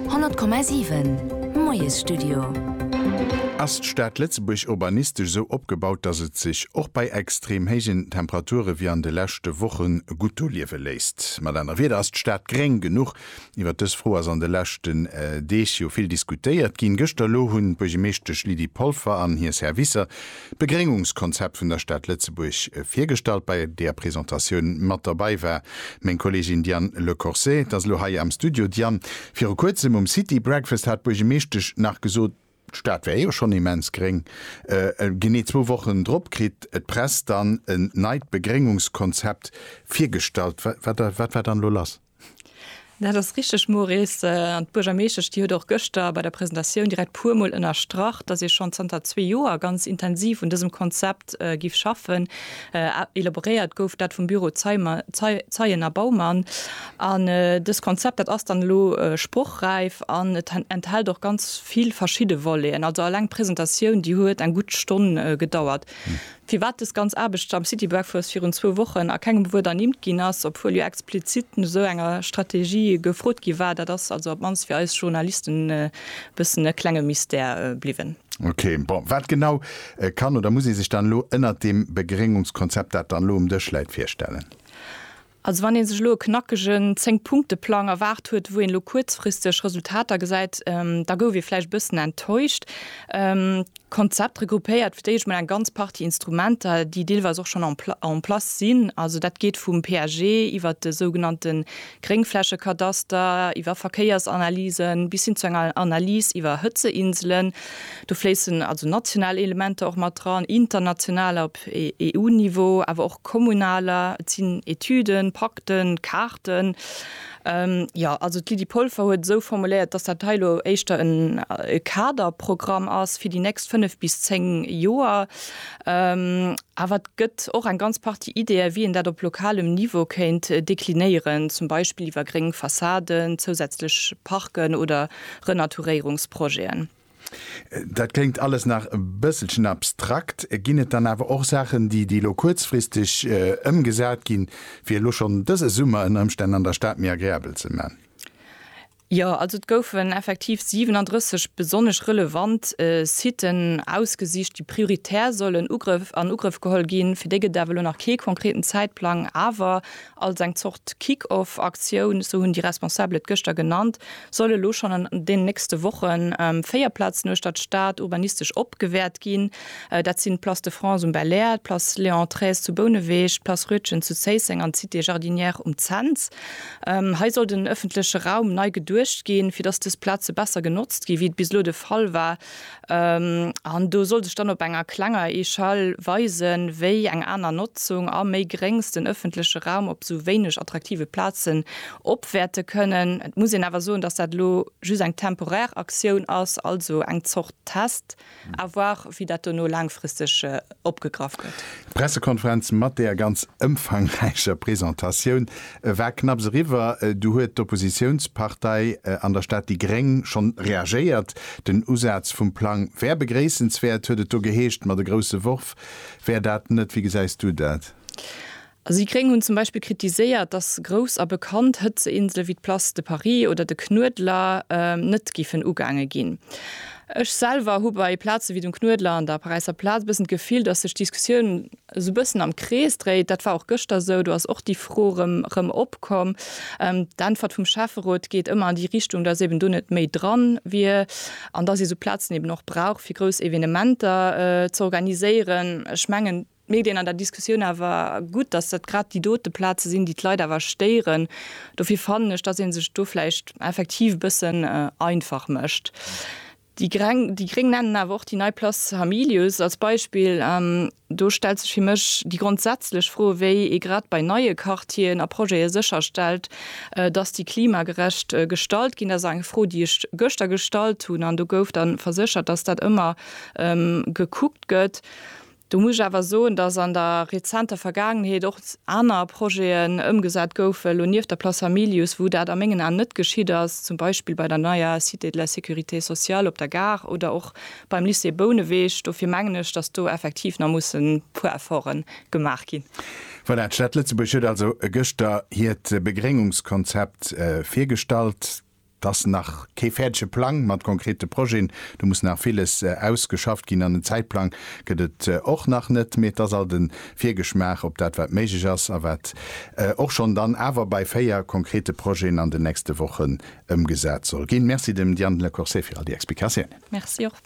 100,7 Moiesstudio. Ass d'Stad Lëtzebuerg urbanistesch esou opgebaut, dass et sech och bei extrem héijen Temperature wéi an de leschte Woche gutt do liewe léisst? Mat aner Wieder, ass d'Stad gréng genuch? Iwwert dës Fro ass an de leschten Deeg jo vill diskutéiert ginn. Gëschter elo hunn d'Buergemeeschtesch Lydie Polfer an hir Servicer D'Begréngungskonzept vun der Stad Lëtzebuerg virgestallt, bei der Presentatioun mat derbei war meng Kollegin Diane Le Corset. T'ass elo hei am Studio. Diane, viru kuerzem um City Breakfast hat d'Buergemeeschtesch nach gesot, d'Stad wär jo schonn immens gréng. Genee zwou Wochen drop kritt d'Press dann en neit Begréngungskonzept virgestallt. Wat war dann elo lass? Dat ass richteg, Maurice. An d'Buergermeeschtesch, déi huet och gëschter bei der Presentatioun direkt puermol ënnerstrach, dass ee schonn zanter zwee Joer ganz intensiv un dësem Konzept giff schaffen. Elaboréiert gouf dat vum Büro Zeimer, Zeien a Baumann. An dëst Konzept, dat ass dann elo sprochräif an et enthält och ganz vill verschidde Voleten. Also eleng d'Presentatioun, déi huet eng gutt Stonn gedauert. Firwat dës ganz Aarbecht am City Breakfast virun zwou Wochen a kengem Wuert ernimmt ginn ass, obwuel jo explizit no esou enger Strategie gefrot gi war, dat ass also op d'mannst fir eis Journalisten e bëssen e klenge Mystère bliwwen. Ok, bon, wat genau kann oder muss ee sech dann elo ënnert deem Begréngungskonzept, dat dann elo um Dësch läit, virstellen? Also wann ee sech elo e knackegen Zéng-Punkte-Plang erwaart huet, wou een elo kuerzfristeg Resultater gesäit, da gouf ee vläicht e bëssen enttäuscht. D'Konzept regroupéiert fir d'éischt mol eng ganz Partie Instrumenter, déi deelweis och schonn en place sinn. Also dat geet vum PAG iwwert de sougenannte Gréngflächekadaster, iwwer Verkéiersanalysen bis hin zu enger Analys iwwer Hëtzeinselen. Do fléissen also national Elementer och mat dran, internationaler. op EU-Niveau, awer och kommunaler, et sinn Etüden, Pakten, Kaarten. Jo, also d'Lydie Polfer huet esou formuléiert, dass dat hei elo éischter en Kaderprogramm ass fir déi nächst fënnef bis zéng Joer. Awer et gëtt och eng ganz Partie Ideeë wéi een dat op lokalem Niveau kéint deklinéieren, zum Beispill iwwer gréng Fassaden, zousätzlech Parken oder Renaturéierungsprojeten. Dat kléngt alles nach e bësselchen abstrakt. Ginn et dann awer och Saachen, déi déi elo kuerzfristeg ëmgesat ginn, fir elo schonn dëse Summer ënner Ëmstänn an der Stad méi agreabel ze man? Jo, also et goufen effektiv 37 besonnesch relevant Siten ausgesicht, déi prioritär sollen an Ugrëff geholl ginn. Fir déi gëtt et awer elo nach kee konkreten Zäitplang. Awer Als eng Zort Kick-off-Aktioun, sou hunn déi Responsabel et gëschter genannt, solle elo schonn an deenen nächste Woche véier Plazen uechter d'Stad urbanistesch opgewäert ginn. Dat sinn d'Place de France um Belair, d'Place Léon Trees zu Bouneweg, d'Place Rütgen zu Zéisseng an d'Cité Jardinière um Cents. Hei soll den ëffentleche Raum nei geduecht ginn, fir datt dës Plaze besser genotzt ginn, wéi et bis elo de Fall war. An do soll sech dann op enger klenger Echelle weisen, wéi eng aner Notzung a méi Gréngs den ëffentleche Raum op esou wéineg attraktive Plazen opwäerte kënnen. Et muss een awer soen, dass dat elo just eng temporär Aktioun ass, also eng Zort Test. À voir, wéi dat dono laangfristeg opgegraff gëtt. D'Pressekonferenz mat där ganz ëmfangräicher Presentatioun E war knapps eriwwer, du huet d'Oppositiounspartei an der Stad déi Gréng schonn reagéiert. Den Usaz vum Plang wär begréissenswäert, huet et do geheescht, ma de grousse Worf wär dat net. Wéi gesäis du dat? Also déi Gréng hunn zum Beispill kritiséiert, datt grouss a bekannt Hëtzeinsele wéi d'Place de Paris oder de Knuedler net giffen ugaange ginn. Ech selwer hu bei Plaze wéi dem Knuedler an der Paräisser Plaz e bëssen d'Gefill, datt sech d'Diskussioun esou bëssen am Krees dréit. Dat war och gëschter esou, do ass och déi Fro erëm opkomm. D'Äntwert vum Schäfferot geet ëmmer an déi Richtung, datt eben do net méi dran wier an datt ee sou Plazen eben och brauch fir grouss Evenementer z'organiséieren. Ech mengen, et mierkt een an der Diskussioun awer gutt, datt dat grad déi dote Plaze sinn, déi d'Leit awer stéieren. Dofir fannen ech, datt ee sech do vläicht effektiv e bëssen einfach mécht. Déi gréng nennen awer och déi nei Place Hamilius als Beispill. An do stellt sech fir mech déi grondsätzlech Fro, wéi ee grad bei neie Quartieren a Projete sécherstellt, datt déi klimagerecht gestalt ginn. Dat ass eng Fro, déi ech gëschter gestallt hunn, an do gouf da verséchert, datt dat ëmmer gekuckt gëtt. Do muss ech awer soen, dass an der rezenter Vergaangenheet och aner Projeten ëmgesat goufen, elo nieft der Place Hamilius, wou dat a mengen Aen net geschitt ass, zum Beispill bei der neier Cité de la sécurité sociale op der Gare oder och beim Lycée Bouneweg. Dofir mengen ech, dass do effektiv nach mussen e puer Efforten gemaach ginn. Voilà, d'Stad Lëtzebuerg huet also gëschter hiert Begréngungskonzept virgestallt. Et ass nach kee fäerdege Plang mat konkrete Projeten. Do muss nach villes ausgeschafft ginn an en Zäitplang gëtt et och nach net. Mee et ass alt e Virgeschmaach op dat, wat méiglech ass a wat och schonn dann awer bei véier konkrete Projeten an den nächste Wochen ëmgesat soll ginn. Merci dem Diane Lecourcé fir all déi Explikatiounen. Merci och.